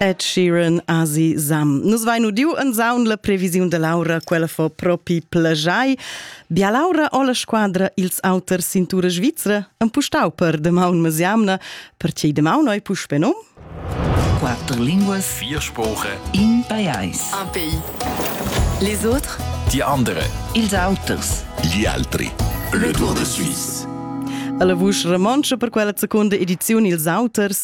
Ed Sheeran Asi Sam. Nus vain udiu en saun la previsiun da Laura, quella fo propi plajai. Bia Laura o la squadra ils auters cintura svizra empustau per demaun mesiamna, perché demaun oi puspe num? Quatter linguas, vier Sprache. In pajais. Un pays. Les autres? Die andere. Ils auters. Gli altri. Le Tour de Suisse. Alla vusch romontscha per quella seconda ediziun ils auters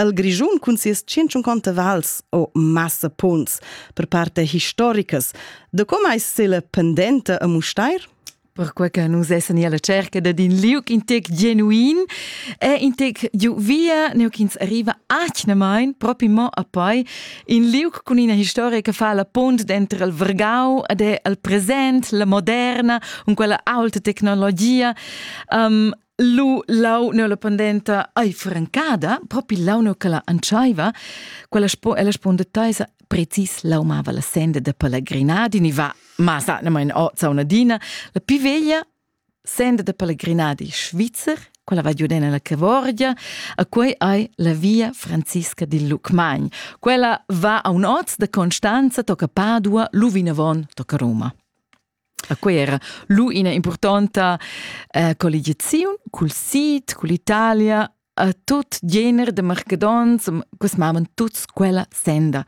El Grischun cun sias 150 vals o massa punts per parte historicas. De com ais sela pendenta a Mustair? Perquai che nus essan alla cerca da din liuc in tec genuin e in tec giu via, neu ch'ins arriva atgnamain propi mo a poi in liuc cun ina historia che fa la punt dentro il Vergau ed è al present, la moderna, un quella alta tecnologia. Um, lu lau ne la pendenta ai francada, propi lau ne quella antschaiva, quella spo ella sponda taisa precis lau mava la senda de pellegrinadi, ni va masa ne mein ozza una dina, la più veglia senda de pellegrinadi svizzer, quella va giudena la Cavorgia, a quei ai la via Francisca di Lucmagn. Quella va a un oz de Constanza, tocca Padua, Luvinavon, tocca Roma. A quei era lu ina impurtonta eh, colligiaziun cul sid, cull'Italia, a tut gener de marcadons, cus mavan tuts quella senda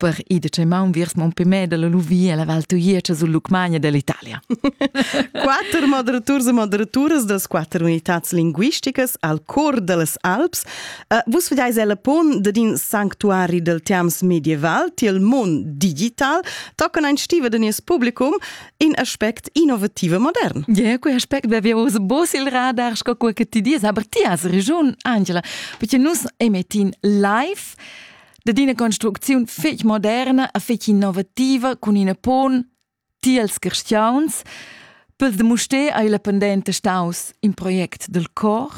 per ir de Cemaun viers Montpellier la Luvia, la Val Tuietsch sul Lucmagna dell'Italia. quatter moderaturs e moderaturas das quatter unitats linguisticas al cor dellas Alps Uh, vus vedeis el pon ded in sanctuari del terms medieval til mon digital toccon ein stiva de nies publicum in aspect innovative modern. Ja, quei aspect be vi us bos il radar sco quei che ti dies, aber ti has regiun, Angela, perché nus emettin live de d'ina construcziun fec moderna a fec innovativa con ina pon Tiels carstgauns Pel de Mustér ei la pendenta staus in project del cor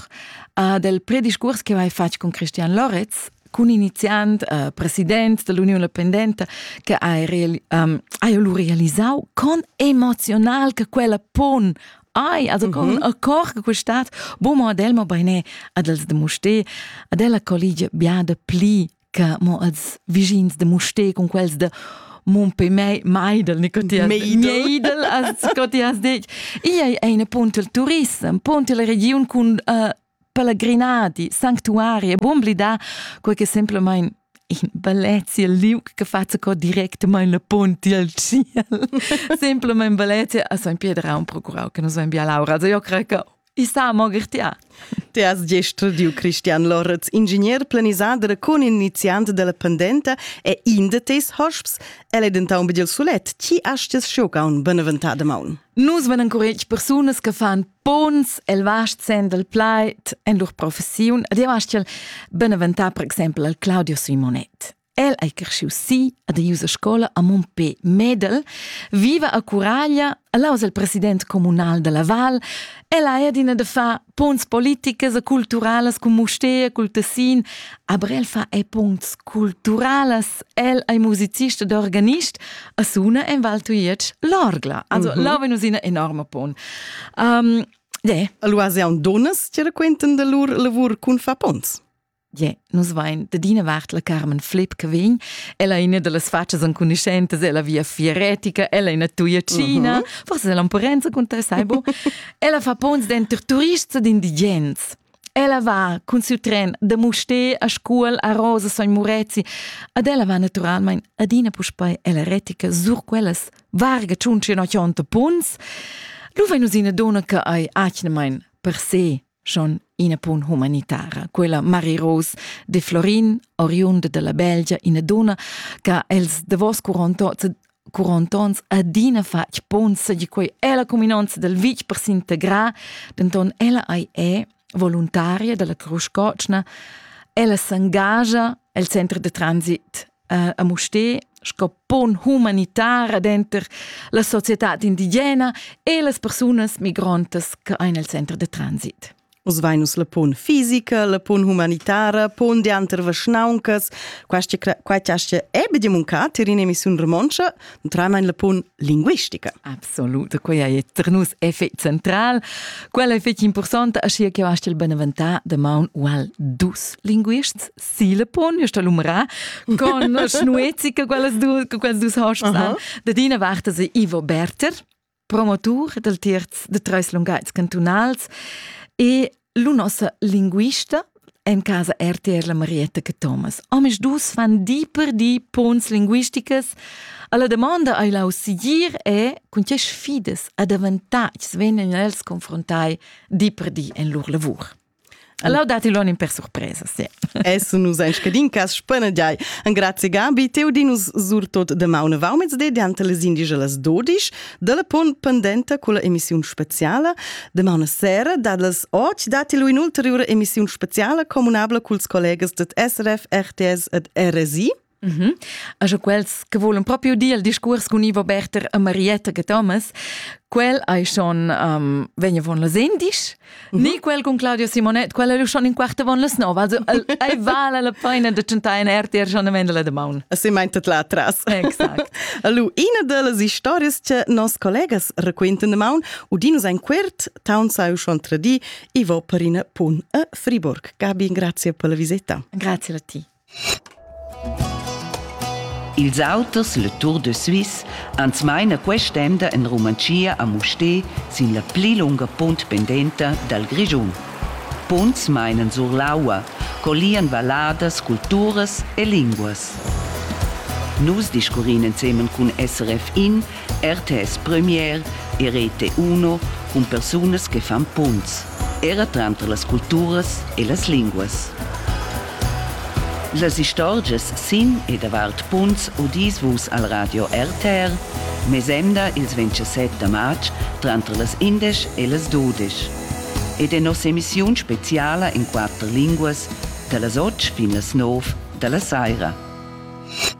a del prediscurs che vai fatg con Christian Loretz, cun iniziant, uh, president dell'Union la Pendenta, che hai, real, um, hai lu realisau con emozional che quella pon Ai, also con mm -hmm. accord che quest'at bo mo ad el mo beine ad els de Musté, ad ella collige biada pli che mo als vischins de Mustè con quels de mon pe mei meidel ne cotias meidel as cotias detg ei ei eine punt il turism punt la region cun uh, pellegrinadi sanctuari e bom blida quei che semplicemente in Valencia liug che faza co directamente la ponte al ciel. Semplicemente Valencia a San Piedra un procurau che nos ven bia laura. Also io creo che I sa mo gertia. Te has gest studiu Cristian Loretz, ingegner planisader cun iniziant della pendenta e in de tes hosps. El è denton begiel sulet. Chi astes schiocaun beneventada maun? Nus van encuretg persunas che fan pons el vast sen del plait en lur professiun. Ad io astel beneventar per exempel al Claudio Simonet. El ei creschius si ad eiusa scola a Mumpé Medel, viva a Curaglia, el aus el president communal dalla val, el ha adina da far punts politicas e culturalas cun Mustér, cul Tessin, aber el fa e punts culturalas, el ei musicist ed organist a suna en Val Tuietsch l'orgla. Also, mm -hmm. là venus ina enorma pon. Um, de. Allora, se un donas ti raquenten de lur lavur cun fa ponts? Yeah, nus vain d'adina vart la Carmen Flipp che vegn. Ella è ina da las fatschas enconuschentas, ella via fieretica, ella è ina tuiacina, uh -huh. forse è l'ampurenza contro saibo. ella fa pons denter turists ed indigens. Ella va cun siu tren da Mustè a Scuol, a Rosa, San Murezi, ad ella va naturalmein adina puspei ella retica sur quellas varga tschunci no chionta punts. Lu vegn nus ina donna che ei atgnamain per se schon ina pun humanitara. Quella Marie Rose de Florin, oriunda della Belgia, ina donna che els davos curontons adina fatg ponza di quei ella cuminanza del vitg per s'integrar, denton ella ei è voluntaria della Cruz Cocna, ella s'engagia el center de transit uh, a Musté sco pon humanitar denter la societad indigena e las persunas migrantas che ein el center de transit. Os vainus la pon fisica, la pon humanitara, pon de anter vaschnauncas, quaita astia ebe di muncat in emissiun romoncia, tramein la pon linguistica. Absolut, quella è per nus effect central. Quella è fetg importante, ascia che astia il beneventà de maun ual dus linguists Silepon ist da l'umra con schnuezi che quellas dus che quels dus hosps han. Da dina vart se Ivo Berter, promotur del terz de Treus Lungaits cantunals e lu nossa linguista en casa RTR la Marietta che Thomas. Omis dus fan di per di pons linguisticas. Alla domanda ai lau sigir è con che sfidas a davantar vegnan els confrontai di per di en lur lavur. Allora dati lon in per surpresa, sì. Esso nus ein scadin cas spanagiai. Engrazi Gabi, teu di nus surtot de maune vaumets de diante les indigelas dodisch, della pon pendenta con la emissiun speciale. De maune sera dad les och dati lu in ulteriore emissiun speciale comunabla culs collegas det SRF, RTS ed RSI. Mm -hmm. Also quels che volen proprio dir il discurs con Ivo Berter e Marietta che Thomas, quel hai schon um, vegna von las indisch, mm -hmm. ni quel con Claudio Simonet, quel è schon in quarta von las nove, also ei vale la pena de chantar in RTR schon am Ende de maun. Si meintet là atrás. Exakt. Allora, una delle stories che nos collegas raccontan de maun, udinus ein quert, taun sai schon tra di, Ivo per in pun a Friburg. Gabi, grazie per la visita. Grazie a ti. Ils auters, le Tour de Suisse, ans maina quest'emda in Rumantschia a Mustér sin la pli lunga punt pendenta dal Grischun. Punts mainan sur l'aua, collian valladas, culturas e linguas. Nus discurrin ensemen cun SRF In RTS Premier e Rete 1 cun persunas che fan punts, era tranter las culturas e las linguas. Las istorgias sin e davart punts udis vus al radio RTR, mesemda ils 27 da marz tranter las 11 e las 12 ed è nossa emissiun speciala in quatter linguas da las 8 fin las 9 da la saira.